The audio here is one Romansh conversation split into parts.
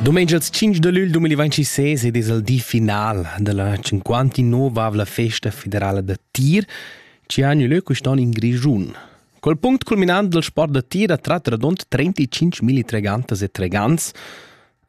Domenica il 5 de luglio 2026 ed es il di final della 59 la festa federala da tir che ha lö quest'on in Grischun. Col punct culminant del sport da tir a tratta radund 35 mili tregantas e tregants.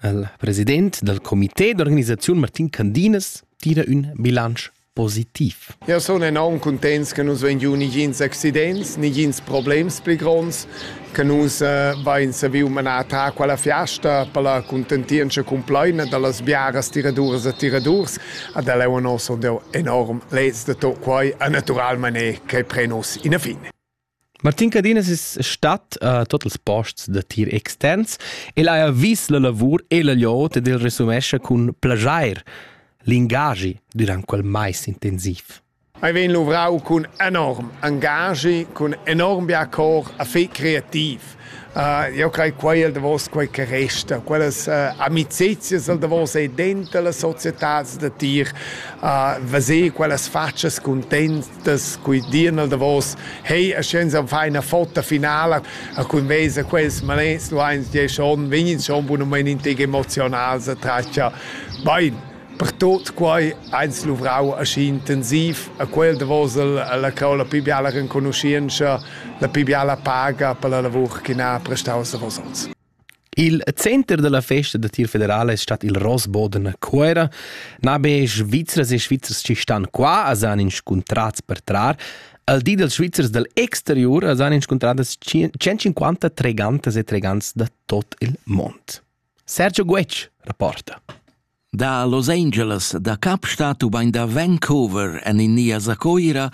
Il president del comité d'organisazione Martin Candinas tira un bilancio positiv. Jau sun enorm cuntents che nus vein giu negins accidents, negins problems pli gronds, che nus eh, vein saviu manar ta quella fiasta per la contentientscha cumplaina dallas biaras tiraduras e tiradurs. Ad el è nos enorm lez de to quai naturalmente che pre nos in a fine. Martin Cadinas es stat a tuot ils posts da tir extens. El haja vis la lavur e la gliot ed el resumescha cun plaschair l'ingagi durant quel mais intensiv. Ei vegn luvrau cun enorm engagi, cun enorm bia cor a fe creativ. Uh, io crei quei el davos quei che resta, quellas uh, amicizias el davos e dentro la società da tir, uh, veser quellas faccias contents das qui dir nel davos hey a scienza fa una foto finale a cui mesa quels malens lu eins die schon vegnin schon bunament in teg emotional se traccia bein per tot quai eins luvrau aschi intensiv a quel davos la cau la più biala renconoscienza la più biala paga per la lavur che n'ha prestau a vosotz Il center dalla festa da tir federala es stat il Rossboden a Cuera. Na be Svizras e Svizzers chi stan qua as han inscuntrats per trar, al di dels Svizzers dal exterior as han inscuntradas 150 tregantas e tregants da tot il mond. Sergio Guetsch rapporta. Da Los Angeles da Kapstadt ubain da Vancouver en India sa Coira,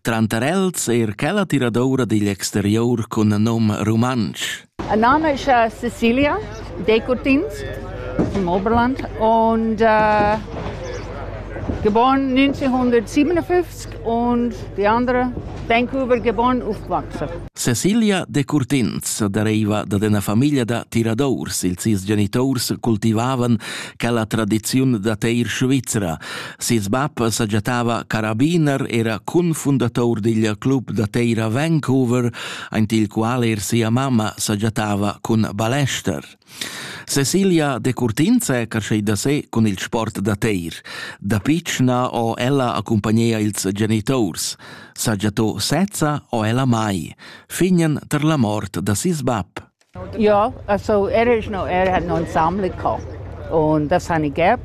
tranter els er quella tiradoura digl exterior cun nom rumantsch. Ein name ist äh, Cecilia Decurtins from Oberland und äh, geboren 1957 und die andere Vancouver geboren aufgewachsen. Cecilia Decurtins deriva dad ina famiglia da tiradors. Ils sis genitors cultivavan quella tradiziun da teir svizra. Ses bab sagiatava carabiner, era confundator digl club da teir a Vancouver, aint il qual er sia mamma sagiatava cun balester. Cecilia Decurtins è creschida da se cun il sport da teir. Da pitschna ho ella accompagnia ils genitors. Saja to sezza o ella mai, fignen ter la mort da sis bab. Ja, also er ist noch, er hat noch ein Sammler gehabt. Und das habe ich gehabt.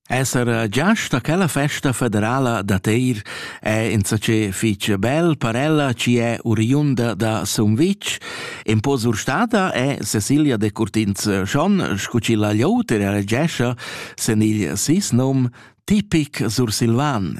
Esser giast a quella festa federala da Teir è insatge fitg bel per ella chi è oriunda da Sumvitg. In po surstada è Cecilia de Curtins schon, scu chi la gliouter elegescha sen il sis nom tipic sursilvan.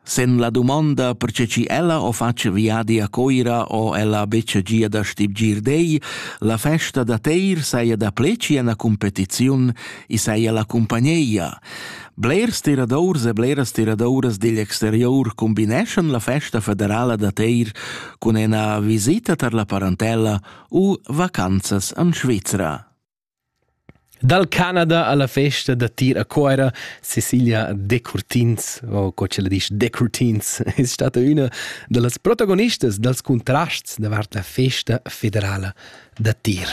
Sen la domanda perche chi ella ho fatg viadi a Coira o ella betsch gia da stibgir dei, la festa da teir saja da pleci ena competiziun, i saja la cumpagneia. Blers tiradors e bleras tiradoras digl exterior combineschan la festa federala da teir cun ena visita tar la parentella u vacanzas an Svizra. Dal Canada alla festa da tir a Cuera, Cecilia Decurtins, o co ce la disch Decurtins, es stata üna da las protagonistas dals cuntrasts davart la festa federala da tir.